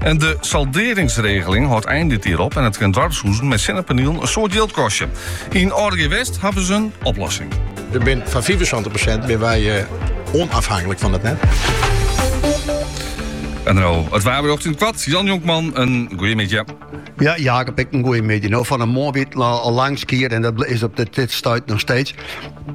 En de salderingsregeling hâldt ein fan dit jier op en it kin doarpshûzen mei sinnepanielen in soad jild kostje. Yn Orkje West hawwe se in oplossing. Der bin foar fiifensantich persint bin wy onafhanklik fan it net. En dan nou, het waar berjocht yn it koart. Jan Jonkman, in goeiemiddei. Ja, Jacob, ek in goeiemiddei. Nou, fan 'e moarn wie it al lang skier en dat is op it stuit noch steeds.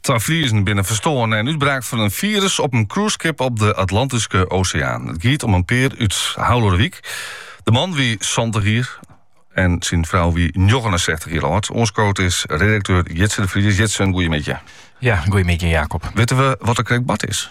Twa Friezen binne ferstoarn nei in útbraak fan in firus op in cruiseskip op de Atlantyske Oseaan. It giet om in pear út Haulerwyk. De man wie santich jier en syn frou wie 69 jier âld. Oanskoot is redakteur Jitse de Vries. Jitse, in goeiemiddei. Ja, goeiemiddei Jacob. Witte we wat der krekt bard is?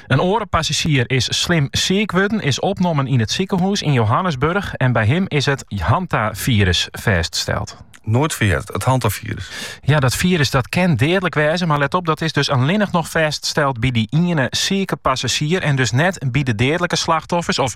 In oare passazjier is slim siik wurden, is opnommen yn it sikehûs yn Johannesburch en by him is it hantafirus fêststeld. Noait fan heard, it hantafirus. Ja, dat firus dat kin deadlik wêze, mar let op, dat is dus allinnich noch fêststeld by dy iene siike passazjier en dus net by de deadlike slachtoffers of